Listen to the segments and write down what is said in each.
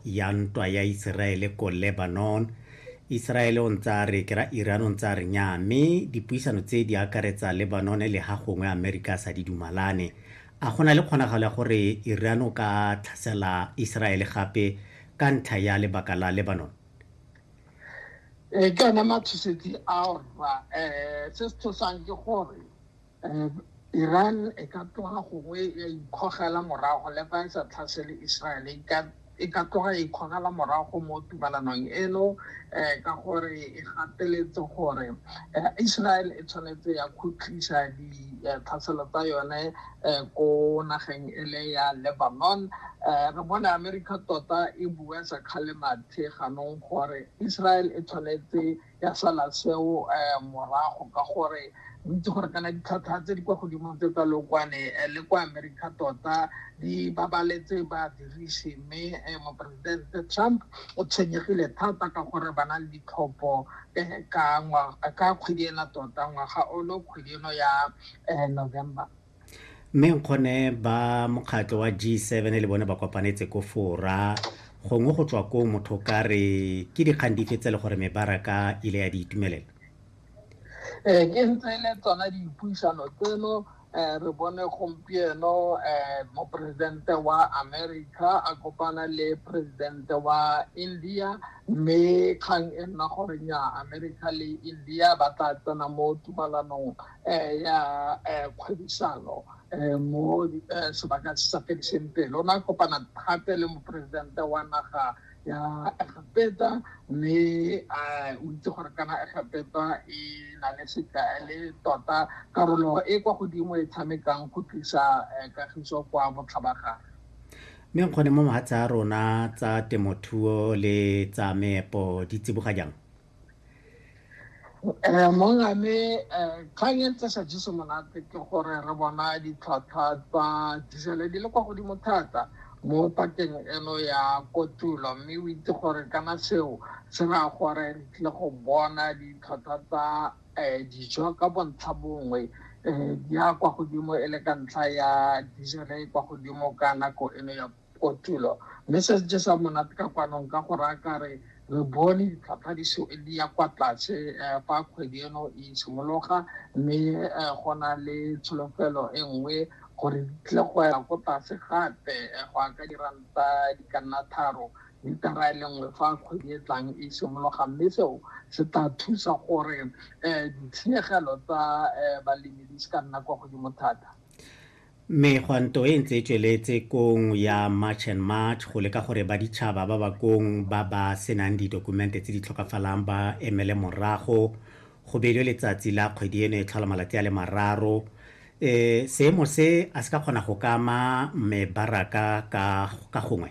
ya ntwa ya Iseraele ko Lebanon. Iseraele o ntse a re ke ra Iran o ntse a re nyaa mme dipuisano tse di akaretsa Lebanon le ha gongwe Amerika a sa di dumalane. A go na le kgonagalo ya gore Iran o ka tlhasela Iseraele gape ka ntlha ya lebaka la Lebanon? Ee, ke one matshosetsi ao rra. Um se se tshosang ke gore Um Iran e ka tloga gongwe ya ikgogela morago le fa e sa tlhasele Israel e ka e ka tloga e ikgogela morago mo tumalanong eno um ka gore e gateletse gore um Israel e tshwanetse ya khutlisa ditlhaselo tsa yone um ko nageng e le ya Lebanon um re bone America tota e bua sa kgale mathe ganong gore Israel e tshwanetse ya sala seo um morago ka gore o itse gore kana ditlhwatlhwa tse di kwa godimo tse tsa lookwane eh, le kwa america tota di babaletse badirisi mme eh, moporesidente trump o tshwenyegile thata ka gore ba na le ditlhopho eh, ka kgwedi ena tota ngwaga olo kgwedi eno ya november Mme Nkgone ba mokgatlho wa G7 le bone ba kopanetse ko Fora, gongwe go tswa koo motho o ka re ke dikgang dife tse le gore mebaraka ile ya di itumelela? Ee, ke ntse e le tsona dipuisano tseno um re bone gompieno um moporesidente wa america a kopana le presidente wa india mme kgang e nna gore nya america le india ba tla tsena mo tumalanong eh, ya eh, kgwebisano eh, mo eh, sebaka se sa fediseng pelo na kopana thate le moporesidente wa naga ya egepeta mme eh, o itse gore kana egepeta e na le sekae le tota karolo e kwa godimo e tshamekang go tlisa eh, kagiso kwa botlhabagare mme nkgone mo mogatsa a rona tsa temothuo le tsa meepo di tsiboga jang um monga me um kgang e ntse sa jeso monate ke gore re bona ditlhwatlhwa tsa dijele di le kwa godimo thata mo pakeng eno ya kotulo mme o itse gore kana seo se raya gore re tlile go bona ditlhwatlhwa tsa um dijo ka bontlha bongwe um di ya kwa godimo e le ka ntlha ya dijele e kwa godimo ka nako eno ya kotulo mme se se jesang monate ka kwanong ka go raya kare re bone ditlhwatlhwa di se di ya kwa tlase eh, fa kgwedi eno e simologa mme eh, go na le tsholofelo e nngwe gore di tle go ya ko tlase gape eh, go ya ka diranta di ka nna tharo litara e le nngwe fa kgwedi e tlang e simologa mme seo se tla thusa gore um ditshenyegelo tsa um balemi di se ka nna kwa godimo thata Megwanto e ntse e tsweletse kong ya March and March go leka gore baditšhaba ba ba kong ba ba se nang didokumente tse di tlhokafalang ba emele morago go beilwe letsatsi la kgwedi eno e tlhola malatsi a le mararo. E, seemo se a se ka kgona go ka ama mebaraka ka, ka gongwe?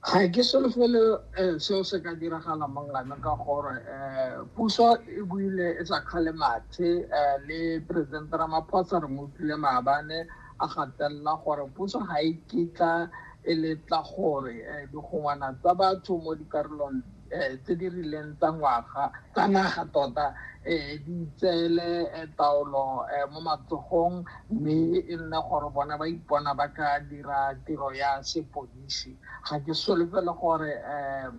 Ga ke solofele um seo se ka diragala mangana ka gore um puso e buile e sa kgale mathe um le president ramaphosa re mo utlwile maabane a gatelela gore puso ga e kitla e letla gore um digongwana tsa batho mo dikarolong um tse di rileng tsa ngwaga tsa naga tota um di tseele um taolo um mo matsogong mme e nne gore bona ba ipona ba ka dira tiro ya sepodisi ga ke solofele gore um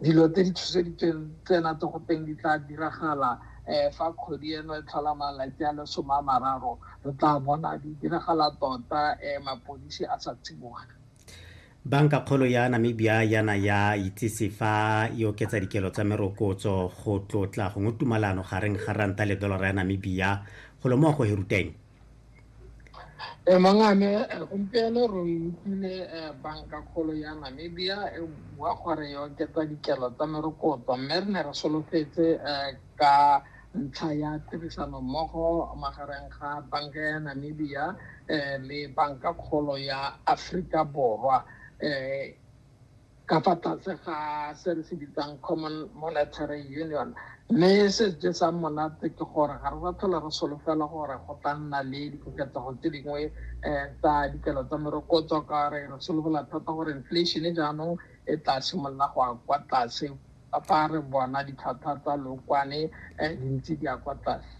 dilo tse di tshoseditsweng tsena tse go teng di tla diragala um fa kgwedi eno e tlhola malatsi a le some a mararo re tla bona di diragala tota um mapodisi a sa tsiboge Bankakgolo ya Namibia ya na ya itsise fa e oketsa dikelo tsa merokotso go tlotla gongwe tumalano gareng ga ranta le dolara ya Namibia. Golo mo go Heruteng. E mangame gompieno re utlwile bankakgolo ya Namibia e bua gore e oketsa dikelo tsa merokotso mme re ne re solofetse ka ntlha ya tirisanommogo magareng ga banka ya Namibia um le banka kgolo ya Aforika Borwa um ka fa tlase ga se re se bitsang common monetary union mme se se jesang monate ke gore ga re sa tlhola re solofela gore go tla nna le dikoketsego tse dingwe um tsa dikelo tsa merokotso ka re re solofela thata gore inflation jaanong e tla simolola go ya kwa tlase A fa re bona ditlhwatlhwa tsa lookwane di ntse di ya kwa tlase?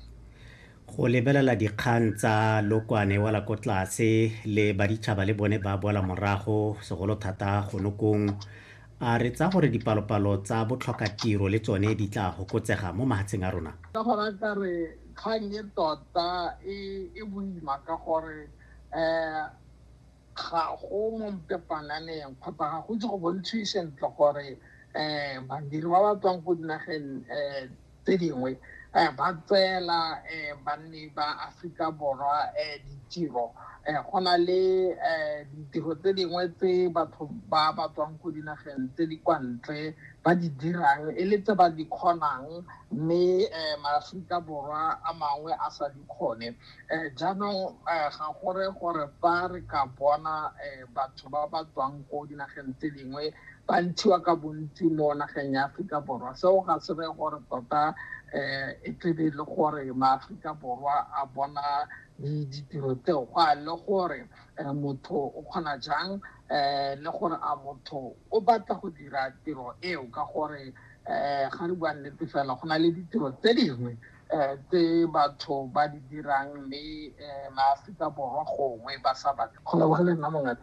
Go lebelela dikgang tsa lookwane e wela ko tlase le baditšhaba le bone ba boela morago, segolo thata gonokong, a re tsaya gore dipalopalo tsa botlhokatiro le tsone di tla fokotsega mo mahatsheng a rona? Ka gore a ka re kgang e tota e boima ka gore. ga go mo mpepananeng kgotsa ga go itse go bontshwe sentle gore um badiri ba ba tswang ko dinageng um tse dingwe um ba tseela um banni ba aforika borwa um ditiro um go na le um ditiro tse dingwe tse batho ba ba tswang ko dinageng tse di kwa ntle ba di dirang e le tse ba di kgonang mme um maaforika borwa a mangwe a sa di kgone um jaanong ga gore gore fa re ka bona um batho ba ba tswang ko dinageng tse dingwe ba ntshiwa ka bontsi mo nageng ya aforika borwa seo ga se re gore tota um e tlebe e le gore maaforika borwa a bona ditiro tseo go a le gore um motho o kgona jang um le gore a motho o batla go dira tiro eo ka gore um ga re bua nnete fela go na le ditiro tse dingwe um tse batho ba di dirang mme um maaforika borwa gongwe ba sa batle go leboga le nna mongaka